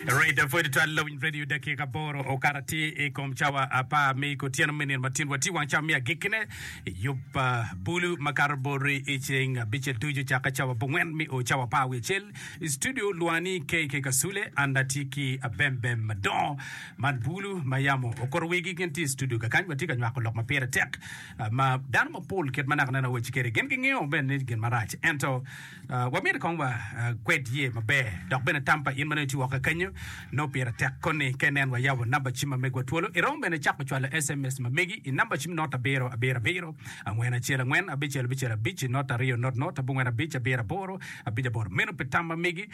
Rita pwod twal lawiny radio dakika aboro okato atir i kom cawa apar me kutyeno me nino matin watye wang cawa me agikkine yub ah, bulu makato boti i ceng abicel ducu cakke cawa bongwen me o cawa apar wiye acel i studio lwani KK Kasule an atye ki abembem madongo man bulu ma yamo okuto wigi gin tye i studio kakany watye ka nywako lok ma pire tek ah, ma dano mapol kit ma naka neno awaci kede gin gingeyo bene ni gin marac ento Wamyero kong wakwed ye maber, dok bene tam pa in ma nongo itye woko kenyo nongo pire tek koni. Ka inen wayabo namba cim ma megwa twolo, iromo bene cako cwalo sms ma megi i namba cim not abiro abiro abiro angwen acel angwen abicel abicel abic not aryo not not abongwen abic abiro aboro abic aboro. Meno pi tam ma megi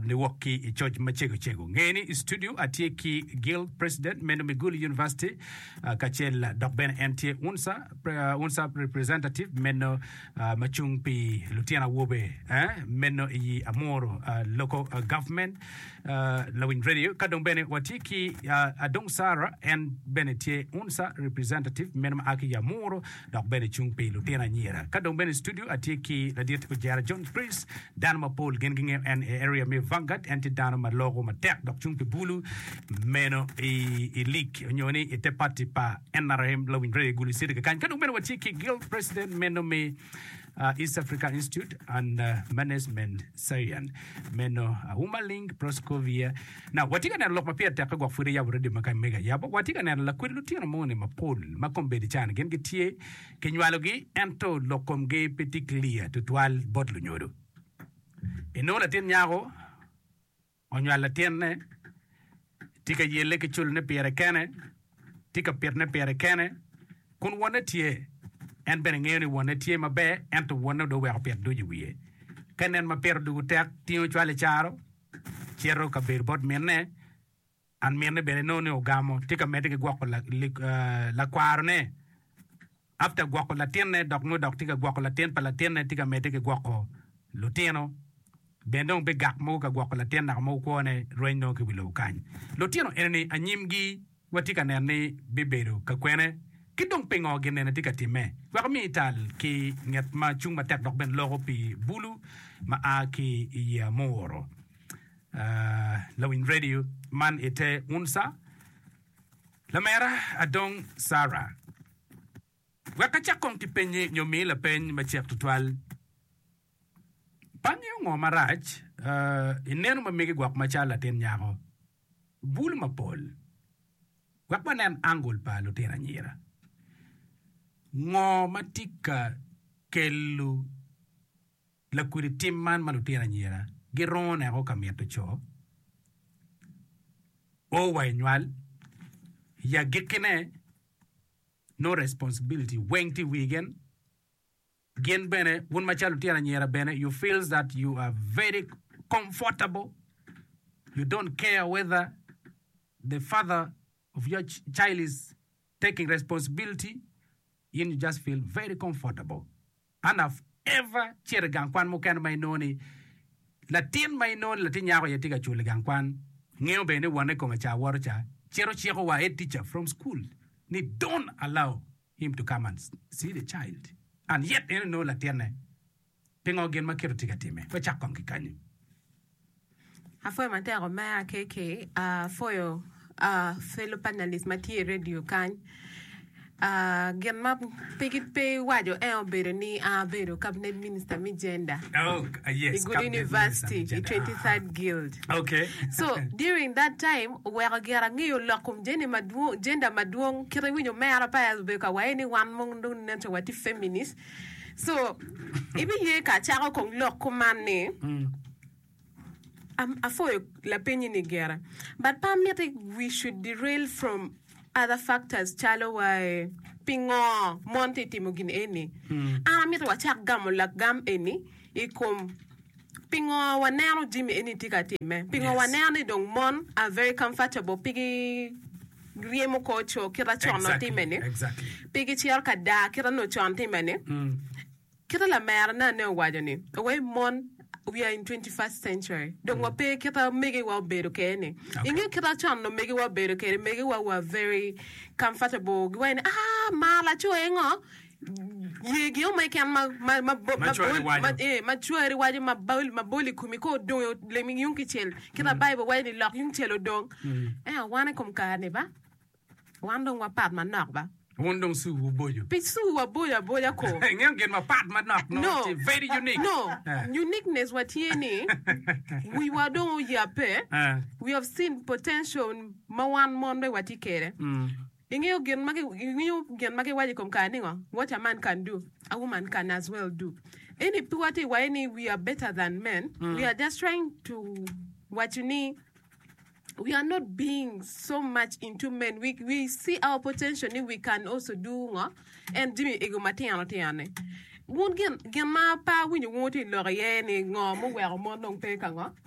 niwok ki i coc macego cego. Nge ni i studio atye ki Gil, president me Lumiguli University, kacel dok bene en tye UNSA, UNSA representative me ma cung pi lutino awobe meno i yi Amuru Local Government Lawiny Radio ka dong bene watye ki Adong Sara en bene tye UNSA representative meno ma a ki Amuru dok bene cung pi lutino anyira ka dong bene i studio atye ki ladit Ojera John Chris dano mapol gin gingeyo en i area me Vanguard en tye dano ma loko matek dok cung pi bulu meno i lig onyo ni i te pati pa nrm lawiny rege gulu city kekany ka dong bene watye ki guild president meno me uh, East Africa Institute and uh, Management Science meno uh, Uma Ling Proscovia na watye ka neno lok ma pire tekke gwok pwod eyabo radio ma ka mega yabo watye ka neno lakwed lutino moni mapol ma kombedi can gin gitye kinywalogi ento lok komgi pe tye clear tutwal bot lunyodo inongo latin nyako Onywalo latinne, tye ka yelle ki culone pire kene, tye ka pitne pire kene. Kun wonne tye, en bene ngeyo ni wonne tye maber, ento wonne dong oweko pit ducu i wiye. Ka nen ma pire odwogo tek, tingo cwale caro, cito ka bedo bot minne, An mine bene nongo ni ogamo tye ka medde ki gwoko lakwarone after gwoko latinne dok nongo dok tye ka gwoko latin pa latinne tye ka medde ki gwoko lutino bene dong bigak mogo ka gwoko latin naka mogo kwone rweny nongo ki wi lobo kany lutino enini anyimgi watye ka neno ni bibedo kakwene ki dong pingo gin eni tye ka timme wek omi ital ki nget ma cung matek dok bene loko pi bulu ma a ki i yeya muuro. Lawiny Radio man i te unca, Lamera Adong Sarah. Wek acak kong ki penyi nyo mi lapeny macek tutwal. Pangi ongo marac i neno ma megi gwok macalo latin nyako? Bulu mapol. Wek wanen angol pa lutino anyira. Ngo ma tye ka kelo. Lakudi tim man ma lutino anyira girongo neko ka mito co o wa i nywal i agikkine nongo responsibility weng tye i wi gen gin bene wun macalo lutino anyira bene you feels that you are very comfortable you don't care whether the father of your child is Taking responsibility in you just feel very comfortable and have ever cito i gang kwan mukene ma inongo ni latin ma inongo ni latin nyako aye tye ka cul i gang kwan. Ngeyo bene ni wonne kome ca woto ca cito ciko wa head teacher from school ni don't allow him to come and see the child and yet en onongo latinne. Pingo gin ma Kit otye ka timme pe cak kong ki kanyi? Apwoyo matek omera KK. Apwoyo fellow panelist ma tye i radio kany. Gin ma pe iwaco ento obedo ni an abedo cabinet minister me gender i Gulu University i Twenty Third Guild. So during that time oweko gira angeyo lok kom gender madwong. Kit iwinyo omera pa obedo ka waye ni wan mono dong neno calo watye feminist. So, ibiye ka acako kong lok kuman ni, am- apwoyo lapenyi-ni gire. But pe amiti we should derail from other factors calo wae pingo mon tye timo gin eni. An amito wacak gamo lagam eni i kom pingo waneno jami eni tye ka timme. Pingo Yes. waneno ni dong mon are very comfortable pigi ryemo kor co kite con nongo timme ni pe gi ciro ka daa kite nongo con timme ni mm. kite lamera na ne owaco ni awe mon we are in 21st century dong wa pe kita mege wa obedo ke ni okay. inge kita chon no mege wa obedo ke mege wa wa very comfortable giwa ni ah ma la cho engo Ye gin mo keken ma cwari waco ma bol i komi ka odongo lemi yung kicel, kit ma Baibul waco ni lok yung cel odong. Ento wan i kom kare-ni ba, wan dong wapat manok ba. Wun dong cu wuboco. Pi cu waboco aboca ko. Ingeyo gin mapat manok mo, No. tye very unique. No, Eh. uniqueness wa tye ni wiwa dong oyape, Eh. we have seen potential ma wan mon bene watye kwede. Mm. Ingeyo gin ma ingeyo gin ma giwaco i kom kare ningo? What a man can do, a woman can as well do. Eni piwa ti waye ni we are better than men. Mm. We are just trying to waco ni we are not being so much into men. We, we see our potential ni we can also do ngo and jimmy ego matino tino ni. Wun gin, gin ma pa winyo wun ti lok iye ni ngo muweko mon dong pe ka ngo.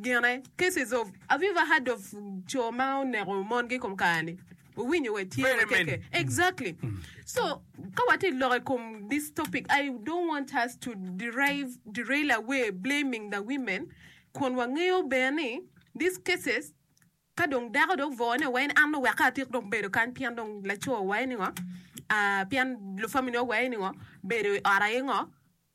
Gine, Cases of Have you ever heard of co ma oneko mongi i kom kare-ni? Wuwinyo wa tye Very many. keke? Exactly. So, ka watye ka loko i kom this topic, I don't want us to derive, derail away blaming the women kun wangeyo bene ni these cases ka dong dako dong oboo ne wa en an dong wek atik dong bedo kany pien dong laco wa aye ni ngo, ah, pien lu family wa aye ni ngo, bedo i ot aye ngo.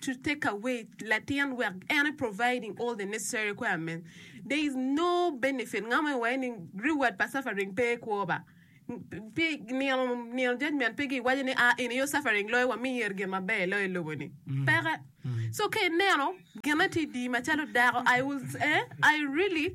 to take away latin wek en e providing all the necessary requirements there is no benefit nga ma iwaye ni reward pa suffering pe kwo ba pe nino nino judgment pe gi waco ni ah eni yo suffering loyo wami yer gin maber loyo i lobo ni peke so ka ineno gine ti di macalo dako I was eh I really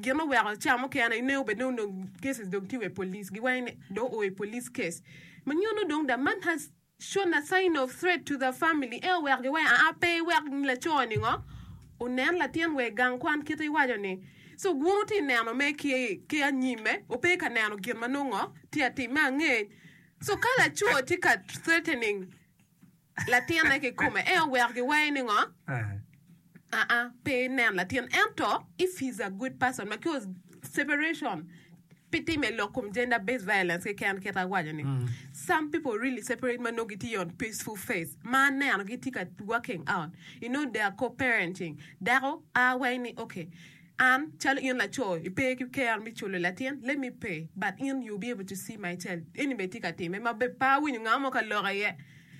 Gin oweko ca mukene ine obed ni onongo cases dong tye wa i police, giwaco ni dong oo i police case. Ma nyuto dong the man has shown a sign of threat to the family. En oweko giwaco aa pe iwek laco-ni ngo onen latin wa i gang kwan kit iwaco ni. So wun wutye ka neno mere ki ki anyime, wupe ka neno gin ma nongo tye ka timme angec. So ka laco tye ka threatening. Latinne kikome, en oweko giwayi ni ngo? Aa, pe inen latin. Ento if he's a good person, because separation pe tim e lok kom gender based violence keken kit awaco ni. Mm. Some people really separate ma nongo gitye on peaceful faith ma aneno gitye ka working out. You know they are co-parenting. Dako a wayi ni okay. An calo in laco ipe ki care me culo latin, let me pay but in you'll be able to see my child. Eni bene tye ka time ma be pe awinyo nga mo ka lok iye.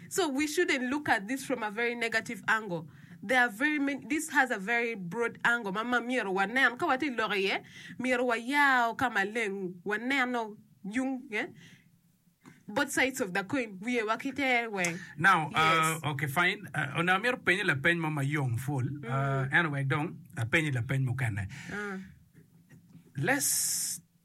So we shouldn't look at this from a very negative angle. There are very many, this has a very broad angle ma ma myero wanen ka watye lok iye myero wayao ka maleng waneno yung eh, both sides of the coin wiyewa ki ter weng. Now, uh, Yes. okay, fine. Uh, onongo amito penyi lapeny mo ma yom full. Uh, ento wek dong apenyi lapeny mukene. Let's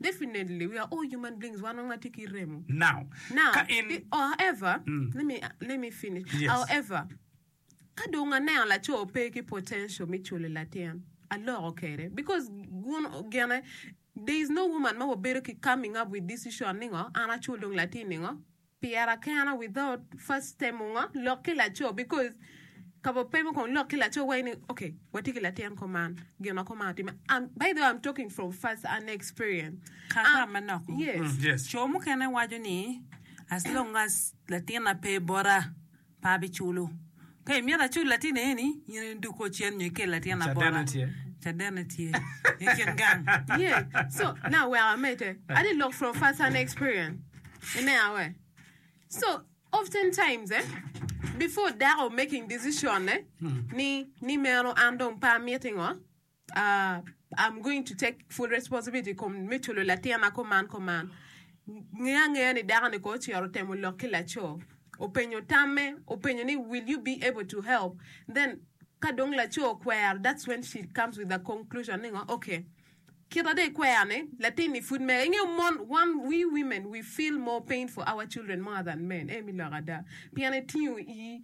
Definitely we are all human beings wan weng watye ki remo. Now, Now, ka in i- however, let me let me finish. Yes. However, ka dong aneno laco pe ki potential me culo latin, aloko kwede because gun gene there is no woman ma wabedo ki coming up with this issue ningo an acul dong latin ningo. Piera kena without first temo ngo lok ki laco because kabo pemo kong lok ki laco wai ni ok watye ki latin ko man gin ma ko man otime um, by the way I'm talking from first an experience Kaka um, manok. yes. Yes. Co mukene waco ni as long as latina pe bota. pe abiculo. Pe imyero acul latinni eni nino ni duk o cen nyo ikel latin abora. Cadene tye. Cadene tye i kin gang. Yeah, so na wek amedde, I did look from first hand experience. I ne a we? So often times eh, before dako making decision ne ni ni meno an dong pe amiti ngo, Uh, I'm going to take full responsibility i kom me culo latina kuman kuman. Nge angeya ni dako-ni ko ocito temo lok ki laco. Openyo tamme, openyo ni will you be able to help? Then ka dong laco okwero, that's when she comes with the conclusion ni ngo, okay. Kita de ikwero-ni, latin-ni pud mega. Ingeyo mon, one, we women, we feel more pain for our children more than men. Emi lok ada. Pien etingo i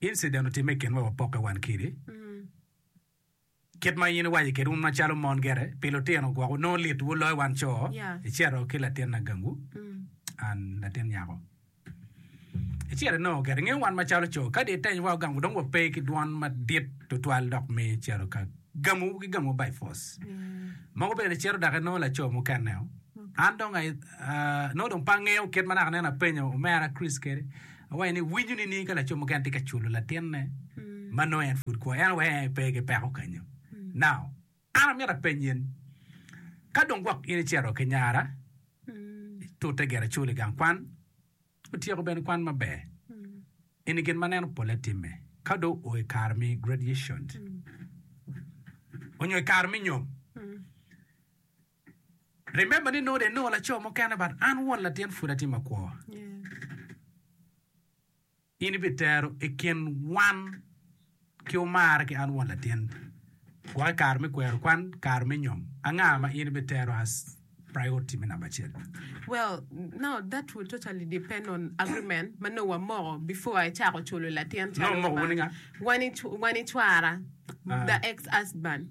Incident otimme i kinwa wapokke wan kidi. Kit ma in iwaco kede wun macalo mon gere pi lutino gwok wunongo lit wu loyo wan co, Yeah. icito ki latin na gangu, an latin nyako. Icito inongo gere. Ingeyo wan macalo co, kadi iteny wa ogangu dong wape ki dwon madit tutwal dok miyo icito ka gamu ki gamu by force. Mogo bene icito dok inongo laco mukene-o. An dong ai- ah, nongo dong pe angeyo kit ma naka nen apenyo omera Chris kede. Awaco ni, Winyo nining ka laco mukene tye ka culo latinne ma nongo en pud kwo? En weko en pe ki peko kenyo. Now, an amito apenyi in, ka dong gwok in icito ki nyara, itute gire icul i gang kwan, otyeko bene kwan maber, in i gin ma neno polle timme, ka dong oo i kare me graduation onyo i kare me nyom, Remember ni nongo dong inongo laco mukene but an won latin pud atye makwor. In ibitero i kin wan ki omara ki an won latin gwok i kare me kwero kwan, kare me nyom. Anga ma in ibitero as priority me namba acel? Well, no, that will totally depend on agreement ma nongo wamoko before icako culo latin calo Nongo omoko wun ni nga? wan ic- wan icwara, Ah. the ex husband.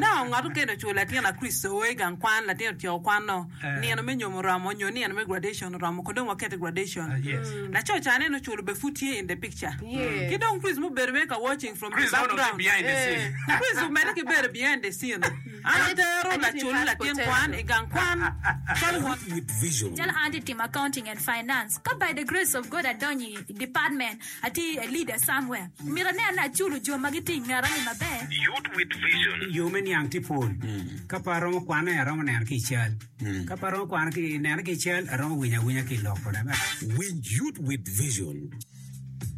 Nongo ngat okene oculo latin Lakricito o i gang kwan, latin otyeko kwano, nino me nyom oromo, nyo nino me graduation oromo, kong dong waket i graduation. Laco ca aneno oculo be pud tye in the picture. Ki dong Chris mubedo mere ka watching from the background. Chris omedde ki bedo behind the scene. An atero lacul latin kwan i gang kwan calo won. Calo an atye timo accounting and finance, ka by the grace of God adonyo i department Ati i Elida Samuel. Myero ane ane aculo jo ma gitye i ngeta-ni maber. Youth with Vision. Yo me niang tye pol. Ka pe aromo kwane, aromo neno ki i cal. Ka pe aromo kwano ki neno ki i cal, aromo winyo awinya ki i lok. Winj Youth with Vision.